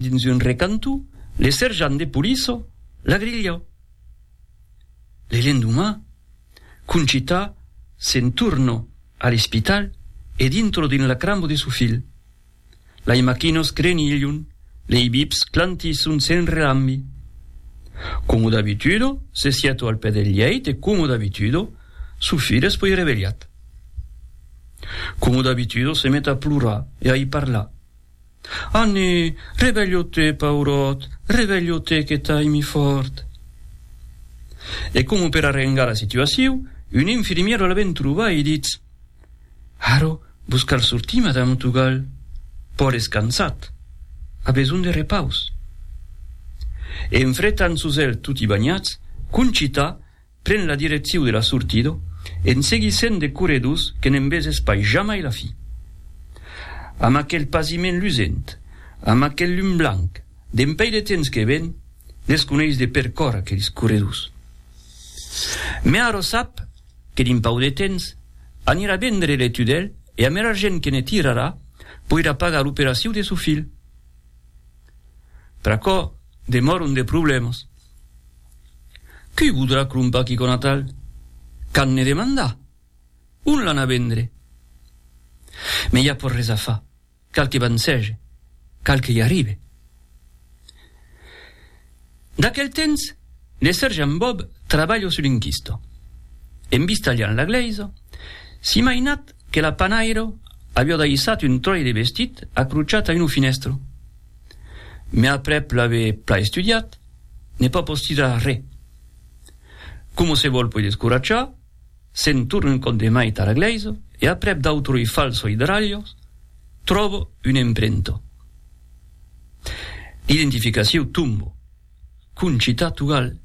Dins un recanto, le serjant de poliça l'agrilha. Le lendomà, Conchita se'n torna a l'espital e dintra dins la cramba de su filh. Lei maquinas crenilhon, lei bips clantisson sen relambi. Coma d'abituda, se sieta al pè del lheit e coma d'abituda, su filh es puèi revelhat. Coma d'abituda, se met a plorar e a i parlar. Anni, revelho-te, paurot, revelho-te que t'ai mi fòrt! E coma per arrengar la situaciu, un infirmièro la ven trobar e ditz, Aro, vos cal sortir, madame Otugal. Paul es cansat. A besonh de repaus. E en fretant sos elhs toti banhats, Conchita, Pren la direcciu de la sortida en seguissent de corredors que ne'n veses pas jamai la fi. Amb aquel pasiment lusent, amb aquel lum blanc, dempèi de temps que ven, desconeis de percor aqueles corredors. Mès ara sap que dins pauc de temps anirà vendre le tudèl e amb er argent que ne tirarà poirà pagar l'operaciu de son filh. Pr'aquò demòron de problèmas. Qui voudrà crompar quicò natal? Qu'an ne demandar? On l'an a vendre? Mès i a pas res a far, cal que vancege, cal que i arribe. D'aquel temps, le sergent Bob trabalha sul inchisto. En vista liant la glèisa, s'i mainat que la panairo aviá daissat un tròi de vestit acrochat a una finèstra. Me aprèp l'ave pla estudiat, n'ai pas pòs tirar re. Coma se vòl poi descoratjar, se'n torna un còp de mai tara glèisa e aprèp d'autroi falso idralhos, tròbo un emprento d'identificaciu tombo. Concita Tugal,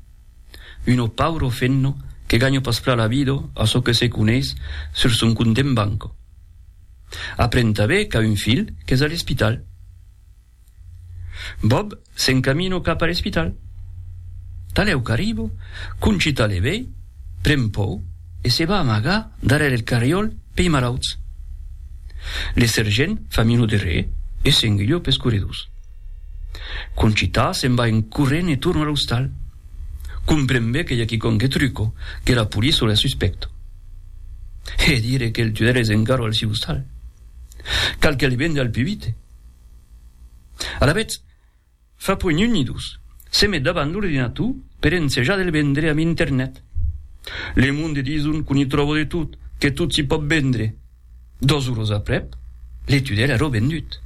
Uno pauro fenno que ganho pas pla la vido a çò que se coneish sur son compte en banco. Aprend tanben qu'a un filh qu'es a l'espital. Bob s'encamino cap a l'espital. Talèu qu'arribo, Concita le vei, pren pòur e se va amagar darrèr el carriòl pei malauts. Le sergent fa minut de re e s'enguilhó pes corredors. Conchita se'n va en corrent e torna a l'ostal. Compren be que i a quicòm que truco, que la police o la suspèct. Hè dire que el tunèl es encara al siu ostal. Cal qu'el vende al pubite. Alavetz, fa puèi un ni dos, se met davant l'ordinator per ensejar de le vendre amb internet. Le monde dison qu'on i tròba de tot, que tot s'i pòt vendre. Dos uros aprèp, le tudèl ero vendut.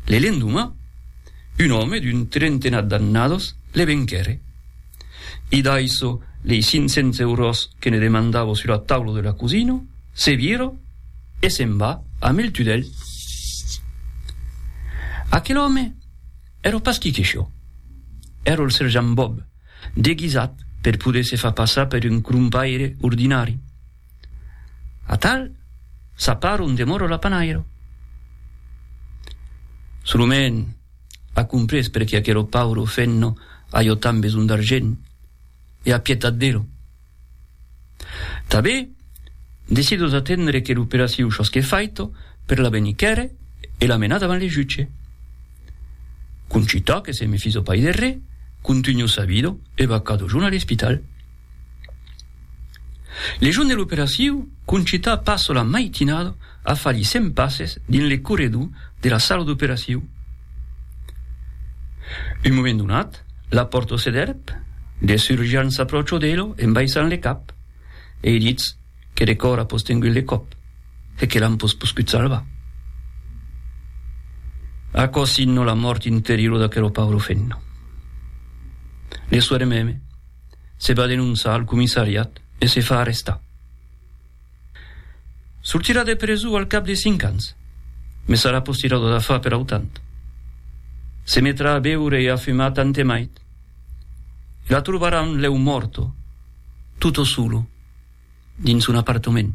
Le lendomà, un òme d'un trentenat d'annados le venquère. I daiso lei cinc cents euros que ne demandavo sur la taula de la cosina, se vira e se'n va amb el tudèl. Aquel òme ero pas qui que çò. Ero el serjant Bob, deguisat per poder se far passar per un crompaire ordinari. Atal, s'aparo en demoro la panairo. Solument, a comprés perqué aquelo pauro fenno a jo tant besonh d'argent, e a pietat d'ero. Tabé, decido d'atendre que l'operaciu shosque faito per la venir quèrre e la menar davant le jutge. Concitò que se me fiso pai de re, contunho sabido e vacado junt a l'espital. Le jorn de l'operacion, Conchita passa la maitinada a far li cent passes dins le corredor de la sala d'operacion. Un moment donat, la pòrta se dèrp, de cirurgians s'apròcha d'ela en baissant le cap e i ditz que le còr a postengut le còp e que l'an pas poscut salvar. Aquò signa la mòrt interiora d'aquela paura femna. Le soir meme, Se va denonçar al comissariat e se fa arrestar. Sortirà de preso al cap de cinc ans, mes sarà postirado de fa per autant. Se metrà a beure e a fumar tant e mait. E la trobaràn lèu mòrto, tutto solo, dins son apartament.